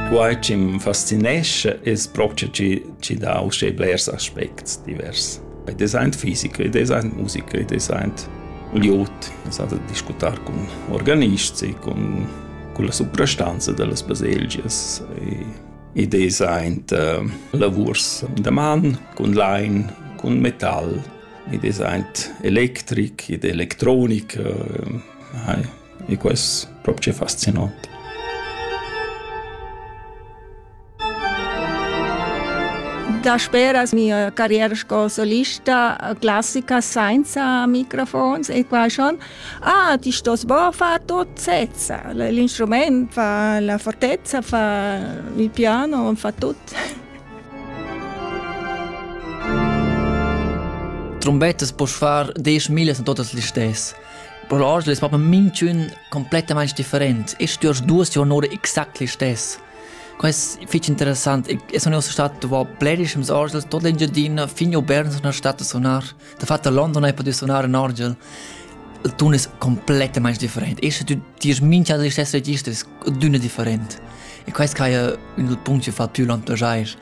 Quai chi m'fascinescha es propcha chi chi dà uschè blers aspects divers. Ed esa aint fisica, ed esa aint musica, ed esa aint glieud. Esa da discutar cun organists e cun culla suprastanza da las baselgias e ed esa aint uh, lavurs da man cun lain, cun metal, ed esa aint electric ed electronica. Hai e quest propcha fascinant. Dasperas mia carriera sco solista classica senza microfons e qua schon ah ti stos bo far tot sezza l'instrument fa la fortezza fa il piano fa tut Trombettas poss far desch millas a totas listess Però oggi es propi minchün complettamaing different e stüers duos juorn'oura exact listess. Quai es fich interessant. E sun uossa stat dovra blerischems orgels tot l'Engiadina fin a Berna sun stat a sunar. Dafat a London hai pudü sunar ün orgel. Il tun es complettamaing different. Esche tü tierst mincha da listess registers d'üna different. E quai es quai ün dal punct chi fa tü l'entusiast.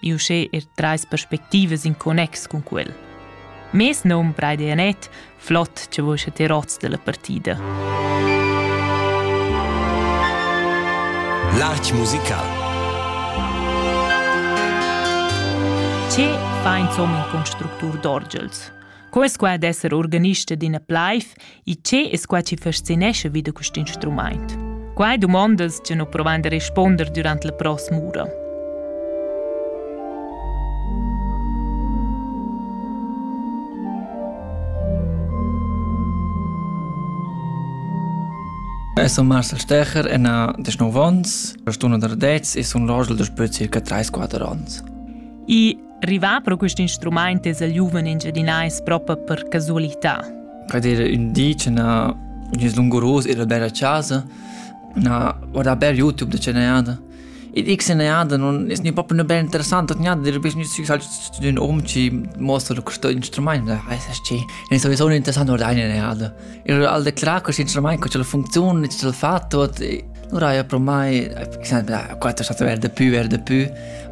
e uschè er trais perspectivas in connex cun quel. Mes nom Braide Anet, flott che vos te rots della partida. L'arch musical Ce fa insomma in constructur d'orgels? Co es qua d'esser organista d'ina plaiv e che es qua chi fascinescha vi da quist instrumaint? Quai dumonda'ls che nu provan da respunder durant la pross'ura. Eu sun Marcel Stecher e na 19 ans, per stuna da 10 e sun l'orgel da spö circa 3-4 ans. E Rivà pro quist instrumaint es il giuven engiadinais propa per casualità. Pred era ün di che na gnüs lunguros ir al bel a casa, na guardà bel YouTube da che nejada. E dic se nejada non es ni propo ne bel interessant, nejada dir bis gnüs fixal zu ün um ci mostra questo instrument, weiß ich ci. E so so interessant guardà eine nejada. E al declara questo instrument co ce la funzione, ce l'ha fatto, e allora io pro mai, sempre, quattro è stato verde più, verde più.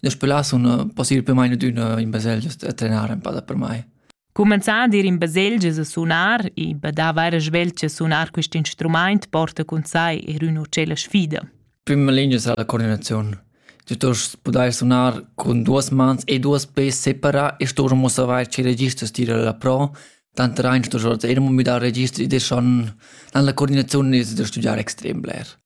Las scolas sun pussibel per mai adüna in baselgia a trenar empada per mai. Cumenzar ad ir in baselgias a sunar e be da vaira sveltsch a sunar quist instrumaint porta cun sai er üna ucella sfida. Prima linea es la coordinaziun. Tu stost pudair sunar cun duos mans e duos pes separa e stost mo savair che register stira la pro, tant rein stost eir mo müdar registri e schon dann la coordinaziun es da studiar extrem bler.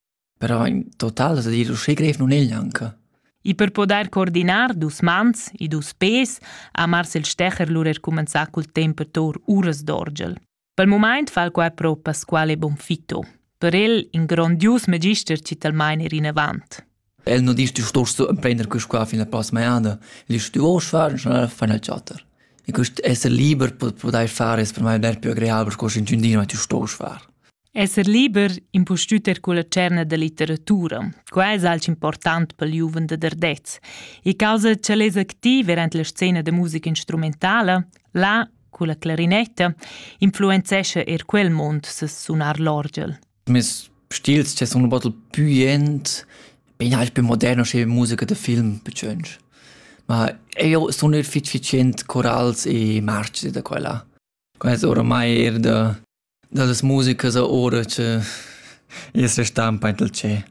però in total sa dir uschè grev nun è gnanca. I per podair coordinar dus mans e dus pes ha Marcel Stecher lura cumenzà cul temp per tour uras d'orgel. Pel mumaint fa quai pro Pasquale Bonfitto. Per el in grondius magister ci talmain er inavant. El no dice tu stos prender quest qua fin la prossima annata. El dice tu vuoi fare, schon fai nel chatter. E quest essere liber per poter fare es per me der più agreabel per quest in giundino, ma tu stos fare. Esser liber impustüt eir culla tscherna da litteratura. Quai es alch important pel giuven da Dardez. E causa cha'l es activ verant la scena da musica instrumentala, là, culla clarinetta, influenzescha eir quel mond ses sunar l'orgel. Mes stils che sun un bottel pü jent, bin halt più moderno che musica da film betschönsch. Ma eu sun eir fitg fitschient corals e marci da quella. Quai es oramai eir da Da las musicas oura cha i's restampaint il tschè.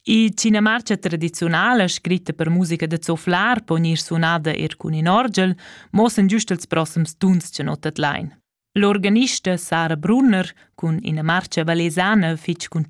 Il Cinemarcia tradiziunal, scritta per musica da zoflar, po gnir sunada eir cun ün orgel, muossan giust ils prossems tuns cha not tadlain. L'organista Sara Brunner cun ina marcha valesana fich cuntschada